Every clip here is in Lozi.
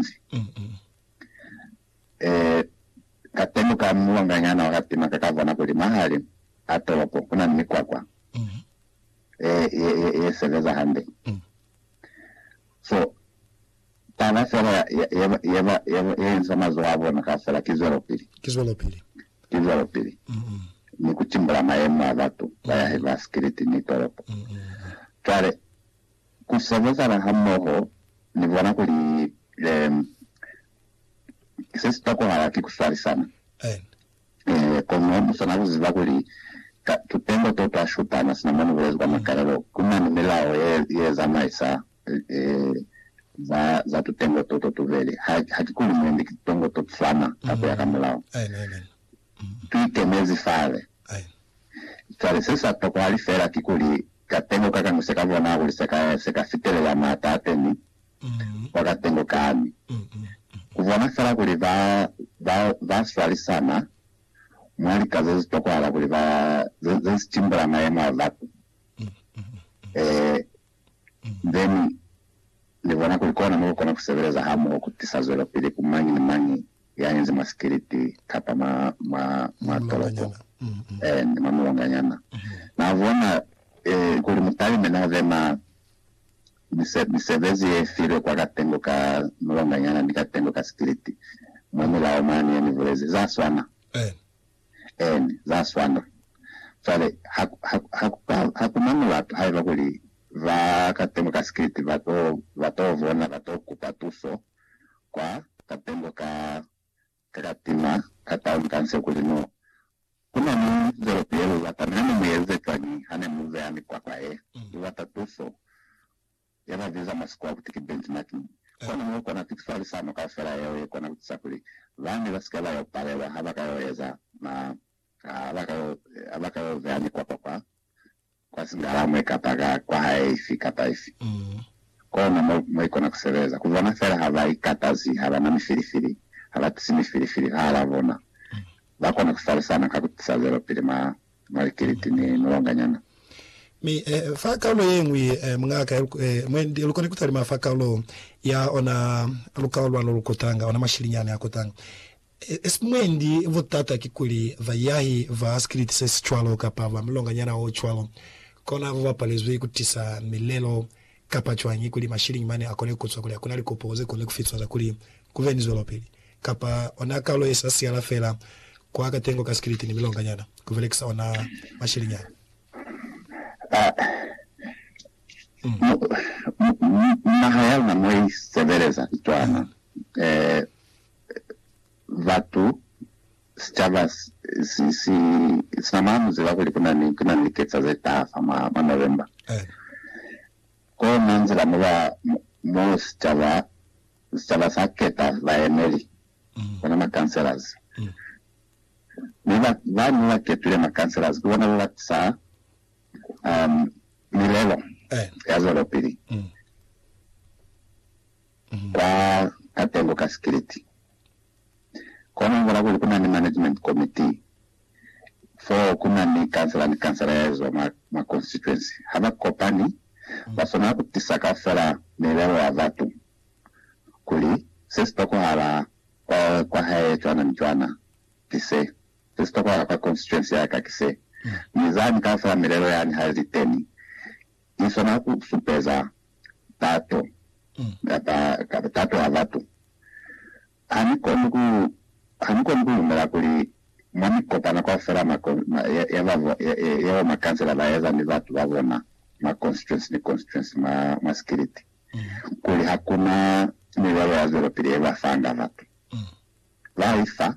mezi. E, ka teñi kwa mulonganyana wa ka tima ka ka bona kuli mwahali a tolopo ku na ni mikwakwa e, ye, ye, ye sebeza hande. So, taba fela ya, ya, ye, ba, ye, ba, ye, ba, ye insa mazoho a bona kaufela ki zwelopili. Ki zwelopili. Ki zwelopili. Ni ku timbula mayemo a batu ba yahe ba sikiliti ni tolopo. Cwale. Ku sebezana hamoho ni bona kuli se si tokohala ki ku swalisana. Kono mu swanela ku ziba kuli ka tutengo to twa shutana sina mo ni bulezi kwa makalelo ku na ni milao ye zamaisa za tutengo to to tubeli. Ha ki kuli mu endi kitutengo to tu swana ka ku ya ka mulao. Tu ikemezi fale. Ai. Cwale se sa tokwahala feela kikuli katengo ka ka ni se ka bona kuli se ka, se ka fitelela maata a teñi kwa katengo kani. Ku bona feela kuli ba, ba, ba swalisana mwa lika ze si tokwahala kuli ba, ze, ze si timbula mayemo a batu. Ee. Then Ni bona kuli kona mo ku kona ku sebeleza ha moho ku tisa zwelopili ku mañi ni mañi ya yenzi mwa sikiliti kapa mwa, mwa, mwa tolopo, and mwa mulonganyana. Na bona, eh, kuli mutalime na be na mise, misebezi ye filwe kwa katengo ka mulonganyana ni katengo ka sikiliti, mwa milao mane ye Ni bulezi. Za swana. Eeni, za swana. Cwale, ha, ha, ha ku ka, ha ku na mulatu haiba kuli ba katengo ka sikiliti ba to, ba to bona, ba to kupa tuso kwa katengo ka, ka katima ka taun ka nse kuli, No, ku na ni zoloto ye lu bata. Mi ha ne mu yelize cwañi ha ne mu beha mikwakwa ye lu bata tuso? ya ba ziza mwa sikwa kuti ki Benz Martin. Kono mo kona pitifalisano kaufela yeo ye kona ku tisa kuli bande ba si ke ba yo palelwa ha ba ka yo eza ma, ha ba ka yo, ha ba ka yo beha mikwakwa kwa, kwa singalamwe kapa ka kwahae ifi kapa ifi. Kono mo, mo i kona ku sebeza, ku bona fela ha ba ikatazi, ha ba na mifilifili, ha ba tisi mifilifili fahal'a bona, ba kona ku falisana ka ku tisa zwelopili mwa Margaret ni mulanganyana. Mi fa kaulo yeñwi mungaka ya mwendi lukoni kutalima fa kaulo ya ona lukao lwalo lukutanga, ona mashilinyani akutanga. Esp mwendi butata kikuli bayahi ba sikiliti sesicwalo kapa ba mulanganyana ocwalo konabo bapalezwi kutisa milelo Kapa cwañi kuli mashilingi mane akone kuzwa kuli akuna likopo zekone kufiswa za kuli kuve ni zwelopili, kapa ona kalo yesa siyala fela kwa katengo ka sikiliti ni milonga nyana, kubelekisa ona mashilingi ana? Mwa naha ya luna mo isebeleza cwana, batu Sicaba sina mwa muziba kuli kuna ni liketsa ze taha fa mwa November. Kono nzila mo ba, mo sicaba, sicaba sa keta baemeli, bona ma councillors. Mi ba, ba ne ba ketile ma councillors ki bona ba ba tisa, um, milelo ya zwelopili. Kwa katengo ka sikiliti, kono ngola kuli ku na ni management committee fo ku na ni kansela ni kansela ya ezwa mwa, mwa constituency. Ha ba kopani, ba swanela ku tisa kaufela milelo ya batu kuli se si tokohala kwa, kwa hae cwana ni cwana ki se, se si tokohala kwa constituency ya ka ki se. Mi zani kaufela milelo yani ha li teni, i swana ku supeza tato kapa tato ya batu. Ha ni koni ku, ha ni koni ku lumela kuli mwa mikopano kaufela mwa ya ba, ya bo makansela ba eza ni batu ba bona mwa constituency ni constituency mwa, mwa sikiliti, kuli hakuna milwelo ya zwelopili ye ba fanga batu. Ba i fa,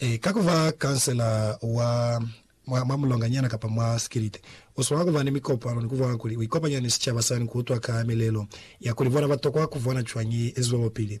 Ee, ka ku ba khansela wa mwa, mwa mulonganyana kapa mwa sikiliti, u swanela ku ba ni mikopano ni ku bona kuli u ikopanya ni sicaba sani ku utwa ka milelo ya kuli bona ba tokwa ku bona cwañi i eziwelopili.